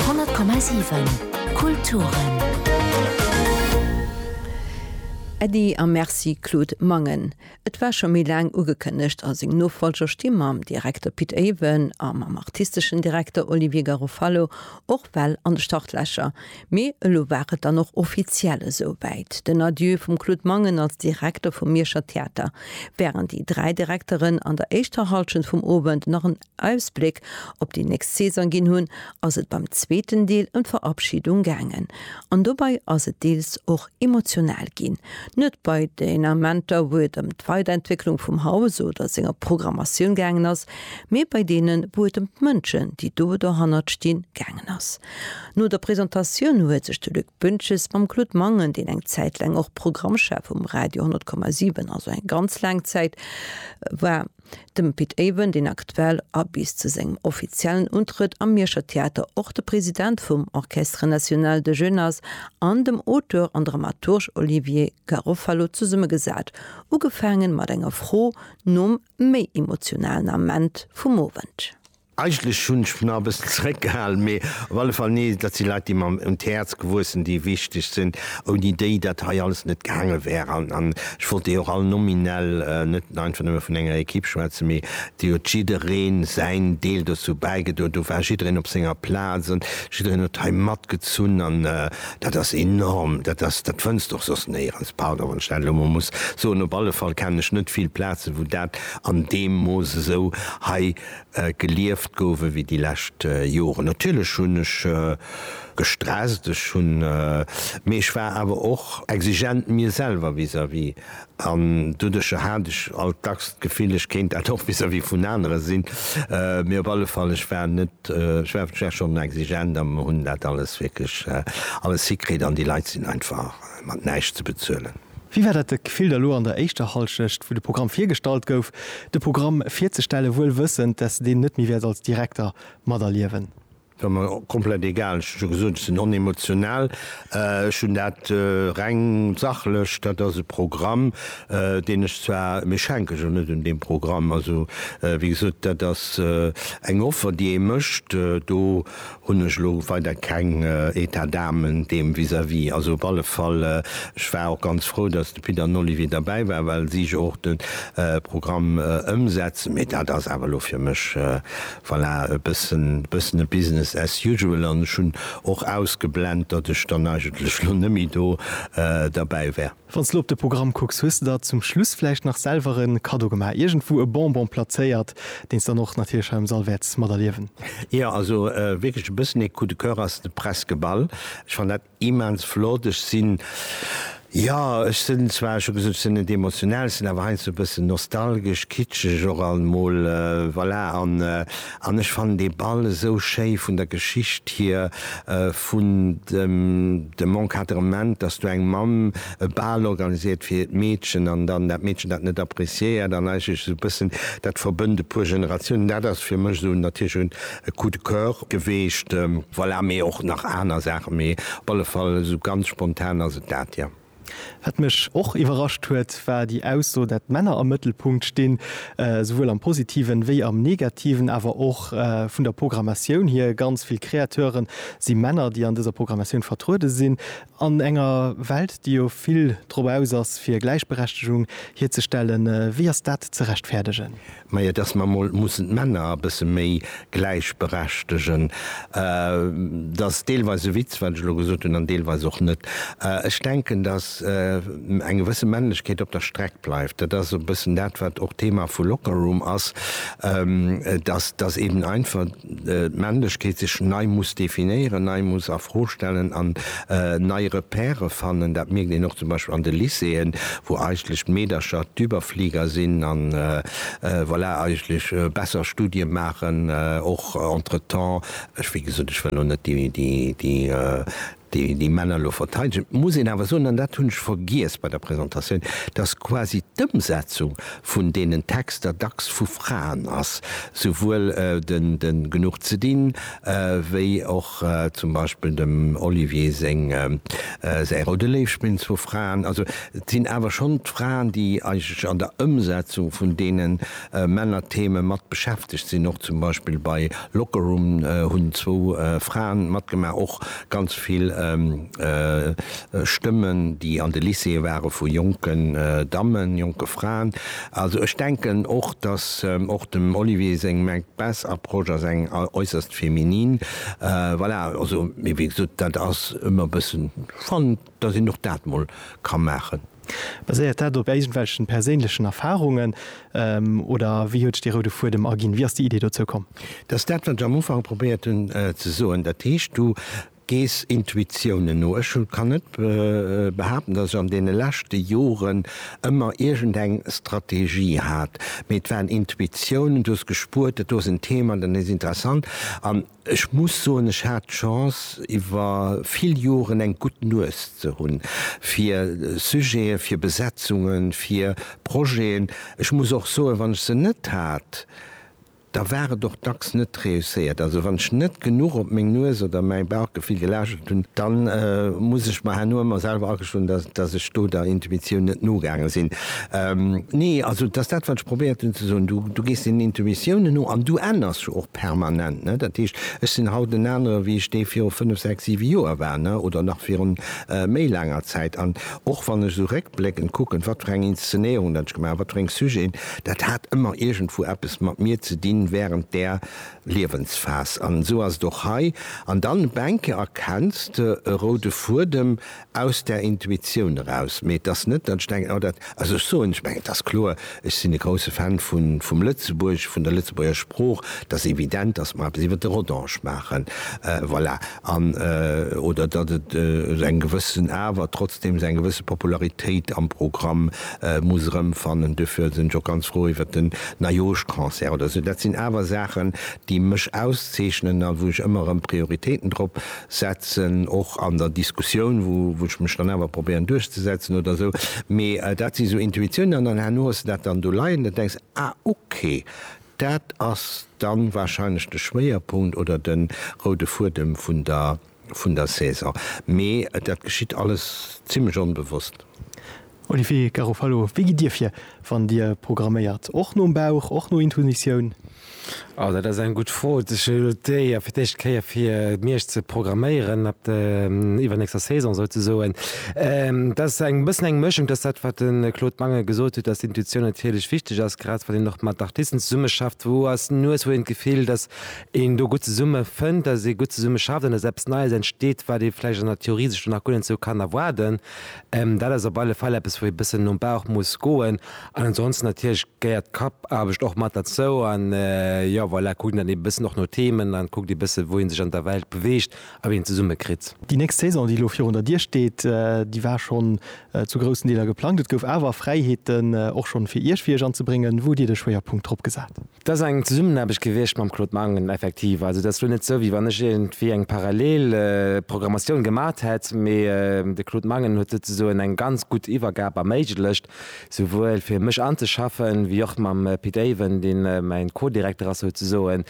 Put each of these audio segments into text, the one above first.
100,7 Kulturen. Äddi a Merci Claude Mangen. Et war scho méi laang ugekënnegt a seng Nofollger sti mam Direkter Pit Avon a mam artisteschen Direkter Olivier Garofalo och well an de Startlächer. Mee elo war et dann och offiziell esou wäit, den Adieu vum Claude Mangen als Direkter vum Mierscher Theater. Wärend déi dräi Direkteren an der éischter Hallschent vum Owend nach en. Ausbléck op déi nächst Saison ginn hunn, ass et beim zweeten Deel ëm d'Verabschidung gaangen. An dobei ass et deels och emotional ginn. Net bei den Amenter wou et ëm d'Weiderentwécklung vum Haus oder senger Programmatioun gaangen ass, mee bei deenen wou et ëm d'Mënschen, déi do dohannert stinn, gaangen ass. No der Presentatioun huet sech de Luc Büntjes mam Claude Mangen, deen eng Zäit laang och Programmchef um Radio 100,7, also eng ganz laang Zäit, war, dem Pit Avon, deen aktuell a bis zu sengem offiziellen Untrëtt am Mierscher Theater och de President vum Orchestre National de Jeunes ass, an dem Auteur an Dramaturg Olivier Garofalo zesummegesat, ugefaange mat enger Fro nom méi emotionalen Ament vum Owend. Eigentlech hunn ech mech nach e bëssen zeréckgehalen, mee op alle Fall, nee, dat si Leit, déi mer un d'Häerz gewuess sinn, déi wichteg sinn, ouni déi dat hei alles net gaange wär. An ech wollt déi och all nominell, net einfach nëmme vun enger Ekipp schwätzen, mee déi huet jidderee säin Deel dozou bäigedroen. Do war jiddereen op senger Plaz an jiddereen huet hei matgezunn an dat ass enorm. Dat ass, dat fënns de och soss néierens, pardon, wann ech dat elo emol muss soen. Op alle Fall kennen ech net vill Plazen, wou dat an deem Mooss esou hei gelieft gouf ewéi déi lescht Joren. Natierlech hunn ech gestresst, ech hunn, mee ech war awer och exigent mir selwer vis-à-vis an doduercher hat ech alt dacks d'Gefill, ech kéint dat och vis-à-vis vun anere sinn. Mee op alle Fall, ech war net, ech war, ech war schonn exigent a mir hunn dat alles wierklech alles hikritt an déi Leit sinn einfach mat näischt ze bezuelen. Wéi war dat de Gefill da lo an der éischter Hallschecht, wou de Programm virgestallt gouf, de Programm virzestellen, wuel wëssend, dass de deen net méi wäert als Direkter materliewen? Et war mer komplett egal. Ech hu jo gesot, ech sinn onemotional. Ech hunn dat reng sachlech, dat ass e Programm, deen ech zwar, mee ech hänke jo net un deem Programm. Also, wéi gesot, dat ass eng Offer, déi ee mécht. Do Hunn ech elo weider keng Etat d'âme deem vis-à-vis. Also op alle Fall, ech war och ganz frou, datt de Peter Nollivier derbäi war, well si jo och de Programm ëmsetzen. Mee dat ass awer elo fir mech, voilà, e bëssen, e bëssen e Business as usual. An ech hunn och ausgeblent, datt ech dann eigentlech elo net méi do derbäi wär. Wann s de lo op de Programm kucks, hues de der zum Schluss vläicht nach selwer e Kaddo gemaach, iergendwou e Bonbon plazéiert, deen s dann och natierlech hei am Sall wäerts materliewen? Jo, also wierklech e bëssen ee Coup de coeur ass de Presque Ball. Ech fannen dat immens flott. Ech sinn, jo, ech sinn zwar, ech hu gesot, ech sinn net emotional, ech sinn awer heiansdo e bëssen nostalgesch, kitscheg och almol, voilà. An An ech fannen dee Ball esou schéi vun der Geschicht hier, vun dem Encadrement, dass do eng Mamm e Bal organiséiert fir hiert Meedchen an dann dat Meedchen dat net appréciéiert an eigentlech esou e bëssen dat verbënnt e puer Generatiounen. Dat ass fir mech esou natierlech un e Coup de coeur geweecht. Voilà, mee och nach aner Saachen, mee op alle Fall esou ganz spontan ass et dat, jo. Wat mech och iwwerrascht huet, war déi Ausso, dat d'Männer am Mëttelpunkt stinn, souwuel am Positiven wéi am Negativen. Awer och vun der Programmatioun hier, ganz vill Kreateure si Männer, déi an dëser Programmatioun vertruede sinn. An enger Welt, déi jo vill drop aus ass, fir Gläichberechtegung hierzestellen, wéi ass dat ze rechtfäerdegen? Majo, dass mer emol mussen d'Männer e bësse méi gläichberechtegen, dat ass deelweis e Witz, wat ech elo gesot hunn, an deelweis och net. Ech denken, dass eng gewësse Männlechkeet op der Streck bleift. Dat ass e bëssen dat, wat och d'Thema vu Lockerroom ass, dass eben einfach, d'Männlechkeet sech nei muss definéieren, nei muss a Fro stellen an nei Repèrë fannen. Dat mierkt een och zum Beispill an de Lycéeën, wou eigentlech d'Meedercher d'Überflieger sinn a voilà, eigentlech besser Studie maachen. Och entretemps, ech, wéi gesot, ech wëll elo net déi déi Männer elo verteidegen, muss een awer soen, an dat hunn ech vergiess bei der Presentatioun, dass quasi d'Ëmsetzung vun deenen Texter dacks vu Fraen ass, souwuel de Genuch ze dinn wéi och zum Beispill dem Olivier säi Roude Léiw spillen zwou Fraen. Also et sinn awer schonn d'Fraen, déi eigentlech an der Ëmsetzung vun deenen Männertheme mat beschäftegt sinn. Och zum Beispill bei Locker Room hunn zwou Fraen matgemaach. Och ganz vill Stëmmen, déi an de Lycéeë ware vu jonken Dammen, jonke Fraen. Also ech denken och, datt och dem Olivier seng Macbeth Approche ass eng äusserst féminine. Voilà, also wéi gesot, dat ass ëmmer e bëssen, ech fannen, dass een och dat mol ka maachen. Baséiert dat op iergendwelchen perséinlechen Erfarungen oder wéi huet sech dee roude Fuedem erginn? Wéi ass déi Idee dozou komm? Dat ass dat, wat ech am Ufank probéiert hunn ze soen. Dat heescht, du gees Intuitiounen no. Ech kann net behaapten, dass ech an deene leschte Joren ëmmer iergendeng Strategie hat, mee et waren Intuitiounen, du hues gespuert, dat do ass en Thema, dat ass interessant. An Ech muss soen, ech hat d'Chance iwwer vill Joren eng gutt Nues ze hunn fir Sujeten, fir Besetzungen, fir Projeten. Ech muss och soen, wann ech se net hat, da war et och dacks net reusséiert. Also wann ech net genuch op meng Nues oder mäi Bauchgefill gelauschtert hunn, da muss ech mer herno ëmmer selwer agestoen, datt ech do der Intuitioun net nogaange sinn. Nee, also et ass dat wat ech probéiert hunn ze soen, du gees den Intuitiounen no an du änners jo och. Permanent, ne? Dat heescht, ech sinn haut en anere wéi ech dee viru fënnef, sechs, siwe Joer war, ne? Oder nach virun méi laanger Zäit. An och wann ech esou réckbléckend kucken, wat fir eng Inszenéierungen dat ech gemaach hunn, wat fir eng Sujeten, dat hat ëmmer iergendwou eppes mat mir ze dinn während där Liewensphas. An esou ass et och hei. An dann op eng Kéier erkenns de e roude Fuedem, Aus der Intuitioun eraus. Mee et ass net, datt ech denken, oh dat, also ech soen, ech mengen, et ass kloer, ech sinn e grousse Fan vun, vum Lëtzebuerg, vun der Lëtzebuerger Sprooch, et ass evident, datt mer eppes iwwer de Rodange maachen, voilà, an, oder datt et esou eng gewëssen, awer trotzdeem esou eng gewësse Popularitéit am Programm muss erëmfannen. Duerfir sinn ech och ganz frou iwwer den Neijooschconcert oder esou. Dat sinn awer Saachen, déi mech auszeechnen a wou ech ëmmer erëm Prioritéiten drop setzen, och an der Diskussioun, wou ech mech dann awer probéieren duerchzesetzen oder esou, mee dat si sou Intuitiounen. An dann herno hues de dat dann do leien, dann denks, ah okay, dat ass dann wahrscheinlech de Schwéierpunkt oder de roude Fuedem vun der Saison. Mee dat geschitt alles zimlech onbewosst. Olivier Garofalo, Wéi gitt Dir vir, wann Dir programméiert? Och nom Bauch, och no Intuitioun? Oh, dat ass eng gutt Fro. Ech hunn elo d'Éier, fir d'éischt Kéier fir Miersch ze programméieren, ab der iwwernächster Saison souzesoen. Dat ass e bëssen eng Mëschung. Dat ass dat, wat de Claude Mangen gesot huet, datt Intuitioun natierlech wichteg ass, grad wann een och mat Artisten zesummeschafft, wou ass d'Nues, wou huet een d'Gefill, datt een do gutt zesumme fënnt, datt ee gutt zesumme schafft an datt eppes Neies entsteet, wat ee vläicht an der Theorie sech do nach guer net esou kann erwaarden. Dat ass op alle Fall eppes, wou ee bëssen nom Bauch muss goen. An ansonsten natierlech gehéiert d'Kappaarbecht och mat derzou. An jo, voilà, kuckt een dann ee bëssen och no Themen an kuckt ee bësse wou ee sech an der Welt beweegt a wéi een zesumme kritt. Déi nächst Saison, déi elo virun der Dier steet, déi war schonn zu groussen Deeler geplangt. Et gouf awer Fräiheeten och schonn fir Iech, fir Iech anzebréngen. Wou hutt Dir de Schwéierpunkt drop gesat? Dat ass eng Zesummenaarbecht gewiescht mam Claude Mangen, effektiv. Also dat ass elo net esou, wéi wann ech iergendwéi eng parallel Programmatioun gemaacht hätt, mee de Claude Mangen huet souzesoen eng ganz gutt Iwwergab erméiglecht, souwuel fir mech anzeschaffen, wéi och mam Pit Avon, dee mäin Co-Direkter ass souzesoen,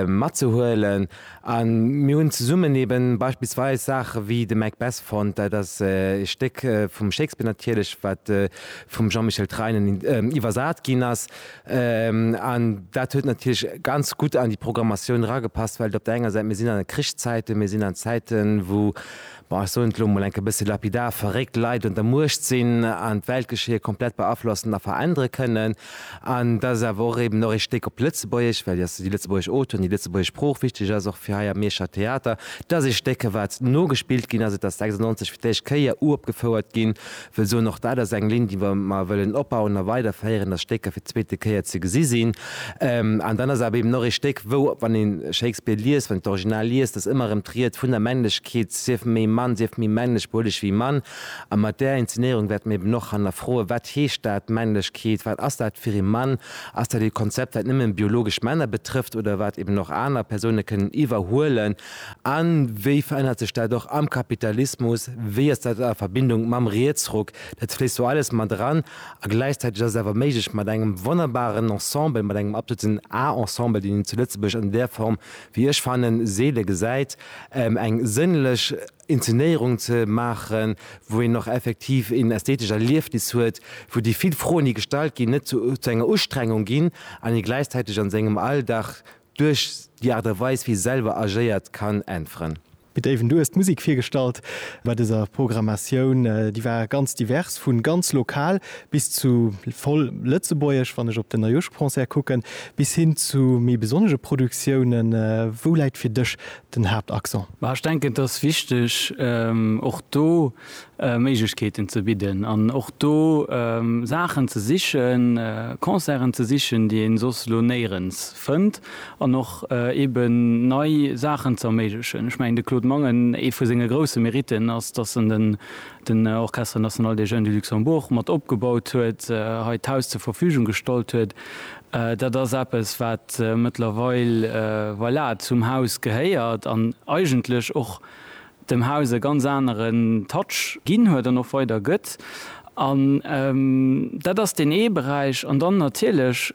matzehuelen. A mir hunn zesummen eeben beispillsweis Saache wéi de Macbeth fonnt, dat ass e Stéck vum Shakespeare natierlech, wat vum Jean-Michel Treinen iwwersat ginn ass, An dat huet natierlech ganz gutt an déi Programmatioun eragepasst, well et op der enger Säit, mir sinn an Krichszäiten, mir sinn an Zäiten, wou, bon, ech soen et elo mol enk e bësse lapidar, verréckt Leit un der Muecht sinn an d'Weltgeschéie komplett beaflossen a verännere kënnen. An dass et awer och eben och ee Stéck op Lëtzebuergesch, well jo déi lëtzebuergesch Auteuren, déi lëtzebuergesch Sprooch wichteg ass, och fir hei am Mierscher Theater, dass ee Stéck, wat nogespillt ginn ass, et ass 96 fir d'éischt Kéier uropgefouert ginn, wëll soen, och dat ass eng Linn, déi mer wëllen opbauen a weiderféieren, dass Stécker fir d'zweete Kéier ze gesi sinn. An dann ass et awer eben och ee Stéck, wou, wann ee Shakespeare liest, wann een d'Original liest, dass ëmmer erëm d'Ried vun der Männlechkeet, sief méi Mann, sief méi männlech, behol dech wéi Mann. A mat där Inzenéierung wäerte mer eben och hannerfroen, wat heescht dat, Männlechkeet, wat ass dat fir ee Mann? Ass dat ee Konzept, wat nëmme biologesch Männer betrëfft oder wat eben och aner Persoune kënnen iwwerhuelen? A wéi verännert sech dat och am Kapitalismus? Wéi ass dat a Verbindung mam Rietsruck? Dat fléisst do alles mat eran. A gläichzäiteg ass et awer méiglech, mat engem wonnerbaren Ensemble, mat engem absoluten A-Ensemble, deen een zu Lëtzebuerg an där Form, wéi ech fannen, seele gesäit, eng sënnlech Inzenéierung ze maachen, wou een och effektiv een ästhetesch Erliefnis huet, wou déi vill Froen, déi gestallt ginn, net zu enger Ustrengung ginn an ee gläichzäiteg an sengem Alldag Duerch déi Aart a Weis wéi selwer agéiert kann äntweren. Pit Avon, du hues d'Musek virgestallt bei dëser Programmatioun. Déi war ganz divers, vu ganz lokal bis zu voll lëtzebuergesch, wann ech op den Neijooschconcert kucken, bis hin zu méi besonnege Produktiounen. Wou läit fir dech den Haaptaccent? Ech denken et ass wichteg och do, Méiglechkeeten ze bidden an och do Saachen ze sichen, Concerten ze sichen, déi een soss elo néierens fënnt an och eben nei Saachen ze erméiglechen. Ech mengen de Claude Mangen, ee vu senge grousse Mériten ass, dass en den Orchestre National des Jeunes du Luxembourg mat opgebaut huet, hei d'Haus zur Verfügung gestallt huet. Dat ass eppes wat mëttlerweil, voilà, zum Haus gehéiert an eigentlech och dem Haus e ganz aneren Touch ginn huet an och weider gëtt. An dat ass deen ee Beräich. An dann natierlech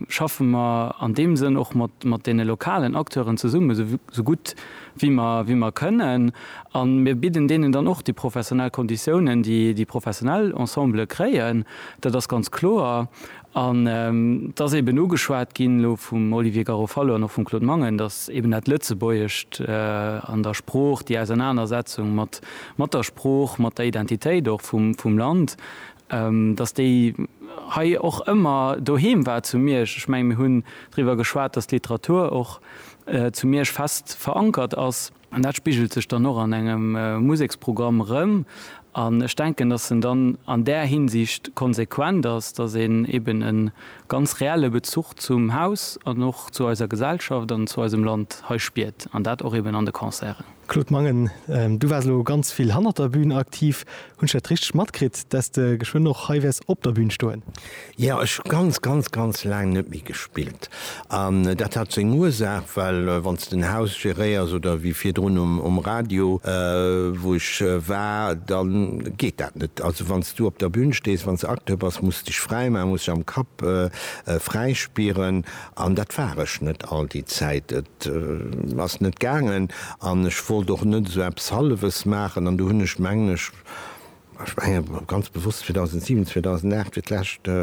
schaffe mer an deem Sënn och mat deene lokalen Acteuren zesummen, esou gutt wéi mer kënnen. A mir bidden deenen dann och déi professionell Konditiounen, déi déi professionell Ensembele kréien, dat ass ganz kloer. An et ass eben ugeschwat ginn elo vum Olivier Garofalo an och vum Claude Mangen, datt eben dat Lëtzebuergescht an der Sprooch, déi Ausernanersetzung mat der Sprooch, mat der Identitéit och vum Land, datt déi hei och ëmmer doheem war zu Miersch. Ech menge mir hunn driwwer geschwat, datt d'Literatur och zu Miersch fest verankert ass. An dat spigelt sech dann och an engem Museksprogramm erëm. An ech denken, dass en dann an där Hinsicht konsequent ass, dass een eben e ganz reelle Bezuch zum Haus an och zu eiser Gesellschaft an zu eisem Land hei spiert. An dat och eben an de Concerten. Claude Mangen, Du waars elo ganz vill hannert der Bühn aktiv. Hunn ech dat richteg matkritt, dass de geschwënn och hei wäers op der Bühn stoen? Jo, ech hu ganz, ganz, ganz laang net méi gespillt. An dat hat seng Ursaach, well wann s de en Haus geréiers oder wéi virdrun um Radio, wou ech war, da geet dat net. Also wann s du op der Bühn stees, wann s de Acteur bass, muss s dech fräi maachen, muss s dech am Kapp fräi spieren. An dat war ech net all déi Zäit. Et ass net gaangen an ech wollt och net esou eppes Hallefes maachen. An do hunn ech, mengen ech, ech menge ganz bewosst 2007, 2008 fir d'lescht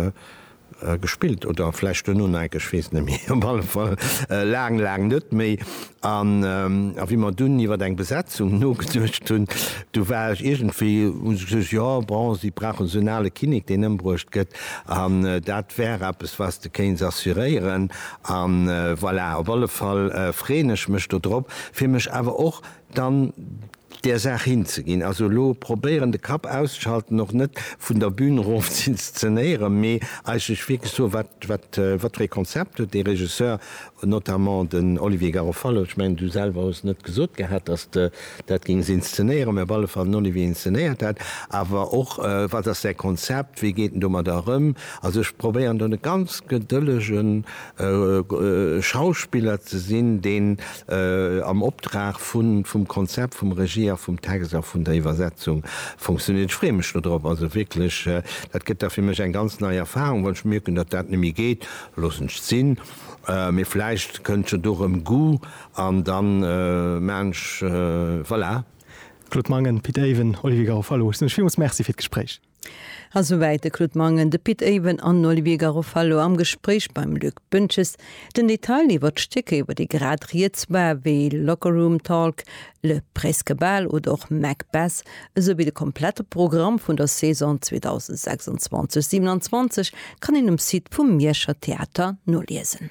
gespillt oder vläicht duerno nei, ech weess net méi, op alle Fall laang, laang net méi. An wéi mer dunn iwwer eng Besetzung nogeduecht hunn, du war ech iergendwéi, hunn se gesot, jo bon, si brauchen esou en ale Kinnek, deen ëmbruecht gëtt, an dat wär eppes, wat s de kéints assuréieren. A voilà, op alle Fall freeën ech mech do drop, fir mech awer och dann där Saach hinzeginn. Also elo probéieren, de Kapp auszeschalten, och net vun der Bün erof z'inszenéieren, mee eigentlech wierklech soen, Wat fir ee Konzept huet dee Regisseur? Notamment den Olivier Garofalo, ech mengen du selwer hues net gesot gehat, datt s de dat géings inszenéieren, mä op alle Fall den Olivier inszenéiert dat. Awer och, wat ass säi Konzept, wéi geet en domadder erëm? Also ech probéieren do e ganz gedëllege Schauspiller ze sinn, deen am Optrag vum Konzept, vum Regie a vum Text a vun der Iwwersetzung funktionéiert. Ech freeë mech dodrop, also wierklech, dat gëtt da fir mech eng ganz nei Erfarung. Wann ech mierken, datt dat net méi geet, loossen ech et sinn. Mee vläicht kënnt jo do rëm Goût an dann maachen ech voilà. Claude Mangen, Pit Avon, Olivier Garofalo, ech soen lech villmools Merci fir d'Gespréich. A souwäit de Claude Mangen, de Pit Avon an den Olivier Garofalo am Gespréich beim Luc Boentges. Den Detail iwwert d'Stécker, iwwert déi grad rieds war, wéi Locker Room Talk, Le Presque Bal oder och Macbeth, esou wéi de komplette Programm vun der Saison 2026, 27 kann een um Site vum Mierscher Theater noliesen.